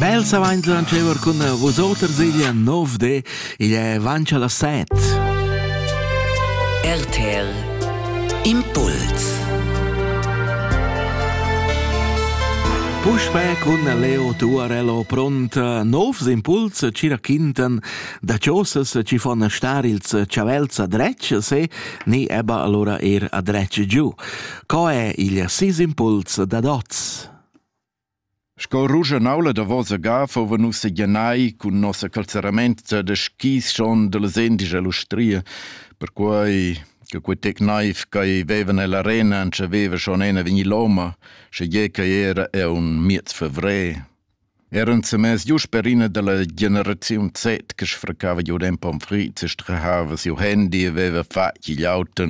Bel savains da ancever cun vosoters igl nov de, igl è avancha las set. RTL Impuls Puspè cun Leo Tuarello pront novs impuls cira quintan da chosas ci fon star ils chavels a dretg se ni eba allora er a dretg giu. Co è il sis impuls da dots? Sco ruschanaula davosa ga fuva nus seglianai cun nossa calzeramente da skis schon dallas endisch ell'ustria, perquei che quei tec naiv ch'ei veva nell'arena entschaveva schon ena vegnir loma, schegie ch'ei era era un miez fevrer. Era ensemens giu sper ina dalla generaziun Z che sfraccava giu en pomfrit e strahava siu handy e veva fatg igl auto.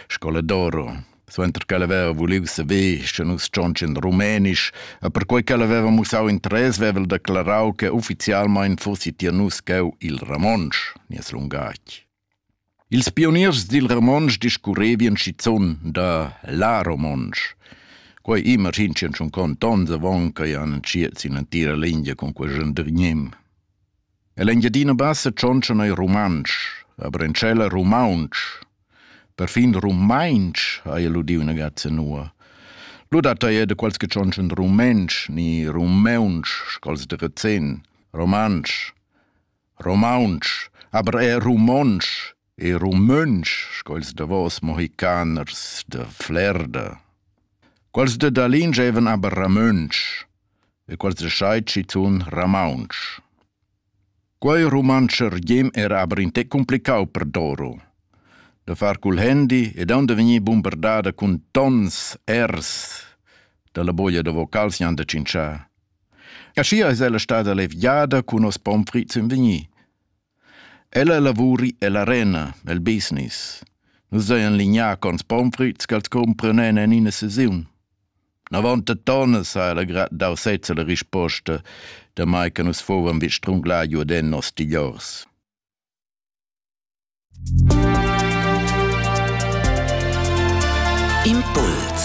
Scoladora, suenter ch'ella haveva vuliu saver, sche nus tschontschin rumenisch, e perquei ch'ella haveva mussau interess, veva el declarau che ufficialmein fussi tier nus cheu il romontsch, nies lungatg. Ils pioniers dil romontsch discurrevien schizun da la romontsch. Quei imaginschien schon contonts avon ch'ei han entschiet sin l'entira lingia cun quei gendergnim. E l'Engiadina Bassa tschontscha neir rumantsch, aber in tschella rumaunsch. Perfin rumainsch ha el udiu üna gazza nua. Lu dat ei de quals che tschontschen rumensch, ni rumeunsch, scols de Rezin, romansch, romaunsch, aber er rumonsch, E rumøntsch, sco ils davos mohicaners da Flerda. Quels da Dalin gievan aber ramöntsch e quels da Schei tschitun ramauntsch. Quei rumantsch ergiem era aber in te complicau per Doro. Da far cul handy e da vegnir bombardada cun tons ers dalla boia da vocals jan da cincià. Aschia es ella stada levgiada cun nos pomfrit in vegnir Ella lavuri ella arena, el business. Nus hajan lignà cons pomfrüts ch'els cumpranen en ina sesiun. Navontatonnas ha ella grat dau sezza la risposta, damai che nus fuvan vi strunglà giu den nos tigliors. Impuls